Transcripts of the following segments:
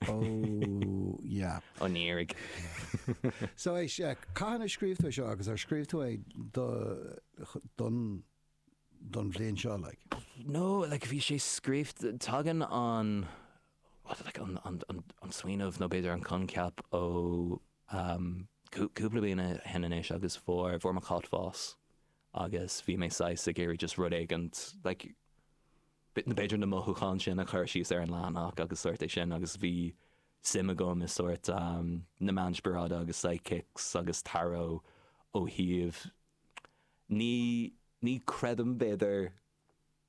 Oh yeah. An iarraidh. So is ea, cathain a scríobh tú é seo agus ar scríobh tú é do don don bhliain seo like? No, like bhí sé scríobh, tagann an what do they like an an an smaoineamh nó b'fhéidir an coincheap ó umm cú- cúpla bliana ó shin anois agus fuair fuair mo chat bás. agus bhí mé saghas ag iarraidh just rud éigin like b'fhéidir na mothúcháin sin a chur síos ar an leathanach agus sórt é sin agus bhí suim agam i sórt na meáin spioráide agus psychics agus tarot ó thaobh ní ní creidim b'fhéidir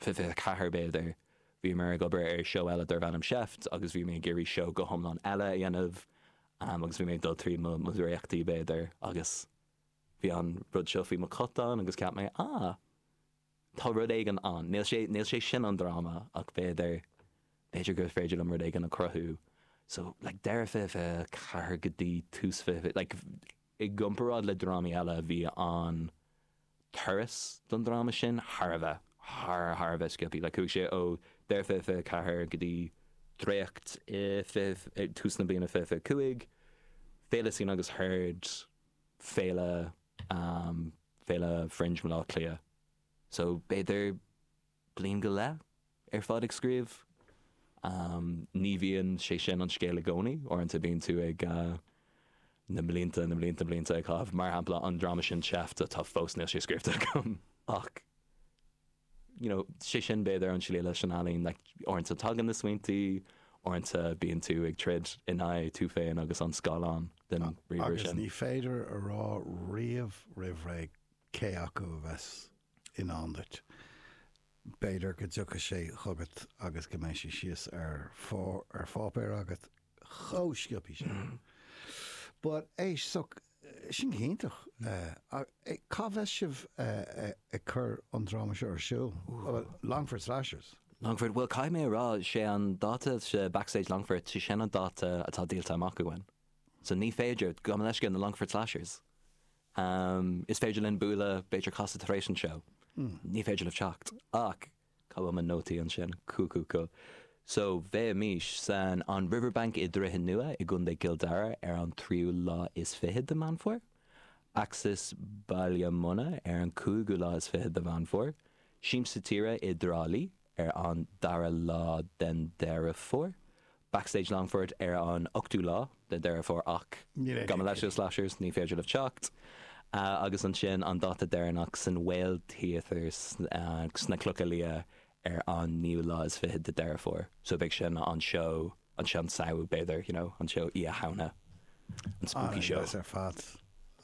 24 b'fhéidir. Bhíomar ag obair ar seó eile darbh ainm Seift agus bhí mé ag iarraidh seó go hiomlán eile a dhéanamh agus bhí mé ag dul tríd mo dhréachtaí b'fhéidir agus bhí an rud seo faoi mo cat ann agus cheap mé ah tá rud éigin ann. Níl sé níl sé sin an dráma ach b'fhéidir b'fhéidir gur féidir liom rud éigin a cruthú. So like deireadh 24 go dtí tús 20 like. I gcomparáid le drámaí eile bhí an turas don dráma sin thar a bheith, thar, thar a bheith sciobtha. Like chuaigh sé ó deireadh fiche fiche a ceathair go dtí dréacht i fiche, ag tús na bliana fiche fiche cúig, Féile Scene agus Heard, Féile, Féile Fringe Bhaile Átha Cliath. So b'fhéidir. bliain go leith ar fad ag scríobh. Ní bhíonn sé sin an scéal i gcónaí. Uaireanta bíonn tú ag na mblianta, na mblianta blianta ag caitheamh. Mar shampla, an dráma sin Seift atá fós, níl sé scríobhta agam. Ach you know, sé sin b'fhéidir an slí leis an ealaín, like uaireanta tagann na smaointí, uaireanta bíonn tú ag troid in aghaidh tú féin agus an scáileán den ríomhaire sin. Agus ní féidir a rá riamh roimh ré cé acu a bheas i ndán duit. B'fhéidir go dtiocfaidh sé chugat agus go mbeidh sé síos ar pháipéar agat chomh sciobtha sin. But éist so, sin go hiontach. Cá mbeidh sibh ag cur an dráma seo ar siúl? Longford Slashers? Longford, bhuel caithfidh mé a rá, sé an dáta sa Backstage Longfort, sé sin an dáta atá díolta amach againn. So ní féidir, gabh mo leithscéal, na Longford Slashers. Am, Is féidir linn bualadh, b'fhéidir casadh tar éis an seó. Ní féidir libh teacht. Ach, cá bhfuil mo nótaí ansin? Cú cú cú. So, beidh muid san An Riverbank i nDroichead Nua i gContae Cill Dara ar an tríú lá is fiche de Meán Fómhair. Axis Baile Munna ar an cúigiú lá is fiche de Mheán Fómhair. Siamsa Tíre i dTrá Lí ar an dara lá den Deireadh Fómhair. Backstage Longfort ar an 8ú lá de Dheireadh Fómhair ach gabh mo leithscéal Slashers ní féidir libh teacht. Agus ansin an dáta deireanach san Whale Theatre sna Clocha Liath ar an 9ú lá is fiche de Deireadh Fómhair. So beidh sin an seó an seó an Samhain b'fhéidir you know an seó Oíche Shamhna an spooky show. An-dheas ar fad.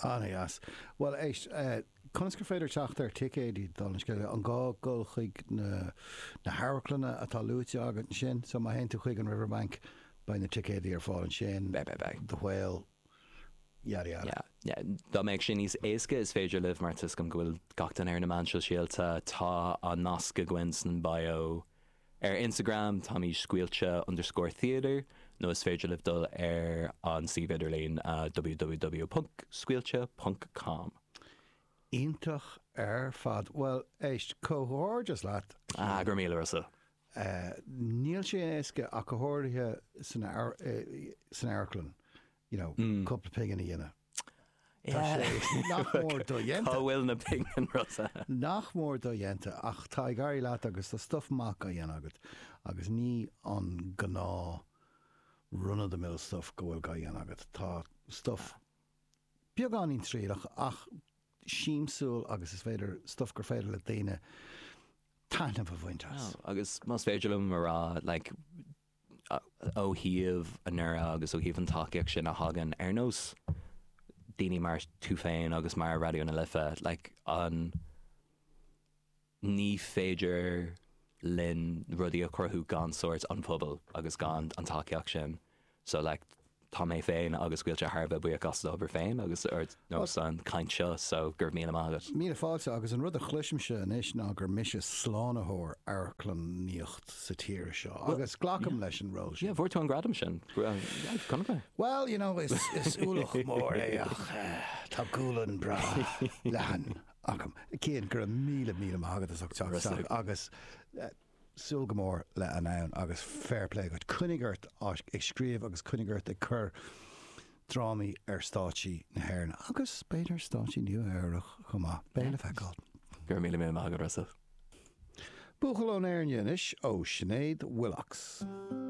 An-dheas. Bhuel éist eh. Conas gur féidir teacht ar ticéidí, dála an scéil? An gá dul chuig na hamharclanna atá luaite agat ansin? So, má théann tú chuig an Riverbank, beidh na ticéidí ar fáil ansin? Beidh, beidh, beidh. The Whale, yada yada. Yeah, yeah. Dá mbeadh sé níos éasca, is féidir libh, mar tuiscim go bhfuil gach duine ar na meáin sóisialta, tá an nasc againn san bio. Ar Instagram táimid scaoilte underscore theatre nó is féidir libh dul ar an suíomh idirlín www.scaoilte ponc com. Iontach ar fad. Bhuel, éist, comhghairdeas leat, a Chian. Ah, go raibh míle a Rossa. Níl sé éasca ach go háirithe san amharclann. you know, cúpla pingin a dhéanamh. Tá sé nach mór do-dhéanta. Cá bhfuil na pinginí, Rossa? Nach mór do-dhéanta, ach tá ag éirí leat agus tá stuif maith á dhéanamh agat agus ní an gnáth run-of-the-mill stuif go bhfuil á dhéanamh agat. Tá stuif beagáinín trialach ach siamsúil agus is féidir, stuif gur féidir le daoine taithneamh a bhaint as. Agus más féidir liom a rá, like, ó thaobh an údair agus ó thaobh an tacaíocht sin a thagann ar nós daoine mar tú féin agus mar Raidió na Life like an ní féidir linn rudaí a chruthú gan sórt an pobal agus gan an tacaíocht sin so like tá mé féin agus Scaoilte thar a bheith buíoch as d'obair féin agus ar nós an chaint seo so go raibh míle maith agat. Míle fáilte, agus an rud a chloisimse anois ná gur mise slánaitheoir amharclannaíocht sa tír seo, agus glacaim leis an ról sin. Yeah, fuair tú an gradam sin. Chonaic mé. Well, you know, is is ualach mór é ach tá gualainn breá leathan agam. Cian, go raibh míle míle maith agat as ucht teacht agus súil go mór le Anam agus fair play dhuit. Coinnigh ort ag scríobh agus coinnigh ort ag cur drámaí ar stáitsí na hÉireann agus b'fhéidir ar stáitsí Nua Eabhrach chomh maith. Beidh le feiceáil. Go raibh míle míle maith agat a Rossa. Buachaill ón Éirne anois ó Sinéad Willcox.